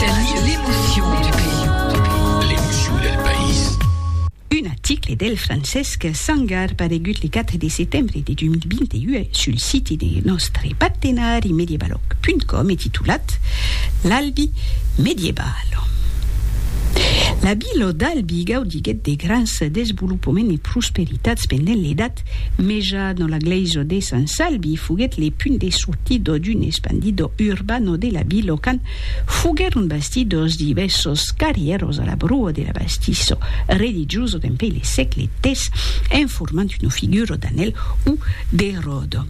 Tènir l'emocion du país. L'emocion del país. Un article del Francesc Sangar paregut le 4 de setembre de 2021 sul siti de nòstre partenari mediebaloc.com e titulat L'Albi medieval. La vila d'Albi gaudiguèt de grands desvolopaments e prosperitats pendent l'Edat Meja dont la glèisa de Sant Salvi foguèt le punt de sortida d'un expandido urbano de la vila quand Foguèron bastits dos divèssos carrièros a la brua de la Bastisso, religioso dempuèi le sègle ix, en formant una figura d'anèl o de ròda.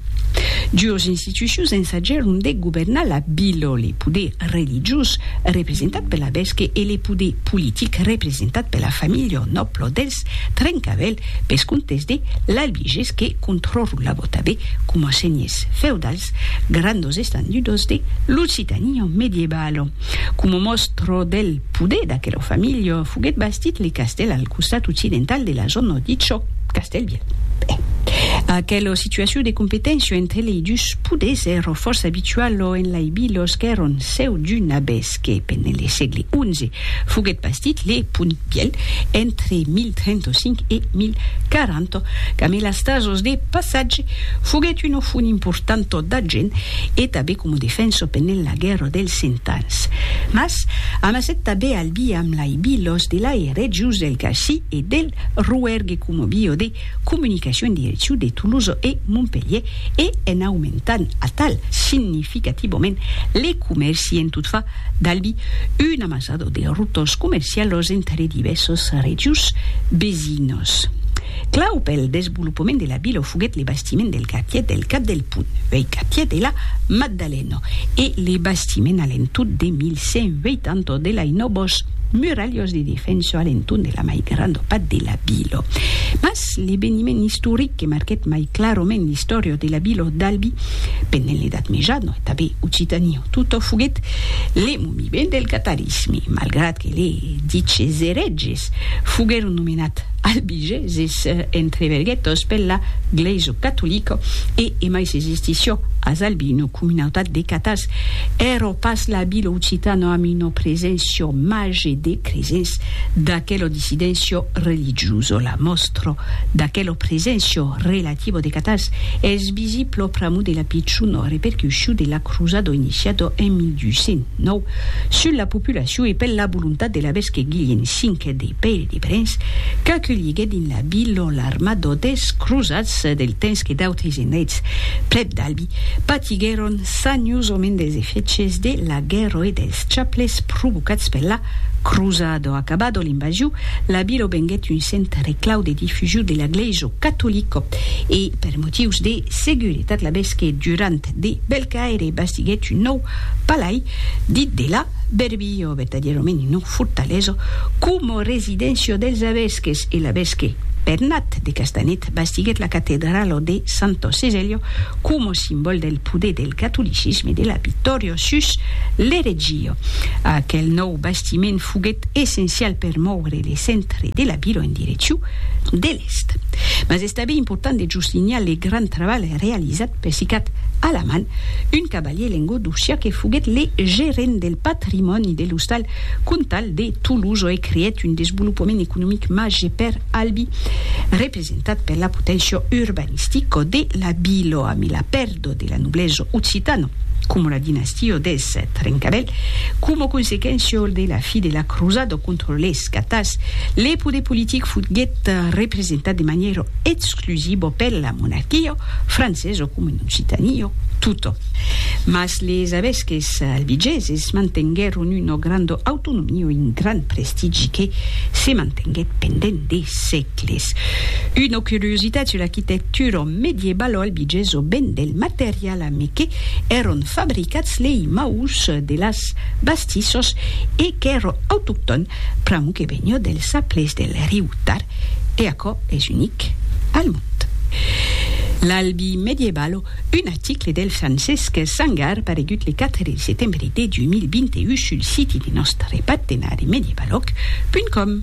Duos institucions ensajèron de governar la vila, le poder religiós, representat per l'abesque, e le poder politic, representat per la familha o nòbla dels Trencavèl, pes comptes de l'Albigés que controrolava tanben coma senhers feudals Eth gran dos estandudos de l'Occitània medievalo. Coma mòstro del poder d'aquera familha, foguèt bastit le castèl al costat occidental de la zòna dit çò Castèl Vièlh. Aquela situacion de competéncia entre lei dus poders èra fòrça abituala en lei vilas qu'èran seu d'un abès. que pendent le sègle xi foguèt bastit le pont Pièl entre 1035 e 1040, qu'amé las tasas de passatge foguèt una font importanta d'argent e tabé coma defensa pendent la guèrra dels cent ans. Mas amassèt tabé al bi amb lai bilos de lai regiós del Cassí e del Rouergue coma biodè comunicacion direcciu de Toulouse e Montpelhier e en aumentant atal significativament le comèrci en tot far d'Albi un amassado de rotors comercialos entre divèssos regions vesinos. Clau pel desvolopament de la vila foguèt le bastiment del Quartier del Cap del Pont, uèi Quartier de la Maddalena, e le bastiment a l'entorn de 1180 de l'Ainobos. Muralhós de defenso a l'entorn de la mai granda part de la vila. Mas l'eveniment istoric que marquèt mai clarament l'istòria de la vila d'Albi pendent l'Edat Mejana e tanben Occitania tota foguèt le moviment del catalanisme, malgrat que les diches erètges foguèron nomenats Albigeses, Jesus entreverguèt dospel la glèisa catolica e emai se gestissió a Zalbi una comunautat de catars. Èrò pas la vila occitana amb una preséncia màger de cresents. D'aquela dissidéncia religiosa, la mòstra d'aquela preséncia relativa de catars es visibla pr'amor de la pichona repercussion de la crosada iniciada en 1209 sus la populacion e per la volontat de l'arvesque Guilhem V de pèir de brens qu'aculhiguèt dins la vil lo l'armada des crosats del temps que d'autres endrets prèp d'Albi patiguèron saniosament dels efèches de la guèrra e dels chaples provocats per la crosada. Acabada l'invasion, la vila venguèt un centre clau de difusion de la glèisa catolica e per motius de seguretat l'abesque Durand de Belcaire bastiguèt un nòu palai dit de la Bèrbia. Io vertadiero menino fortaleso como residencio dels avesques e l'avesque Bernat de Castanet bastiguèt la catedralo de Santo Seselio como simbol del poder del catolicisme de la victòria sus l'eretgia. Aquel nòu bastiment foguèt essencial per mòure le centre de la vila en direccion de l'èst. Mas es tanben important de juslinhar le grand trabalh realizat Pessicat a la man, un cavalier lengodocia que foguèt le gerent del patrimòni de l'ostal comtal de Tolosa e creèt un desvolopament economic màger per Albi, representat per la poténcia urbanistica de la vila. Amé la pèrda de la noblesa occitana, coma la dinastia dels Trencavèl, coma consequéncia de la fi de la crosada contra les catars, le poder politic foguèt representat de manièra exclusiva Plusibo per la monarquio, francés o coma en Occitanio, tutto. Mas les avesques albigeses mantenguèron una granda autonomia e un grand prestigi que se mantenguèt pendent de sègles. Una curiositat sus l'arquitectura medievaloalbigesa ven del material amé que èron fabricats lei maurs de las bastissas e qu'èra autoctòn pr'amor que veniá dels aplès del riu Tar e aquò es unic al mond. L'Albi Medievalo, un article del Francesc Sangar paregut le 4 de setembre de 2021 sul siti de nòstre partenari medievalòg punt com.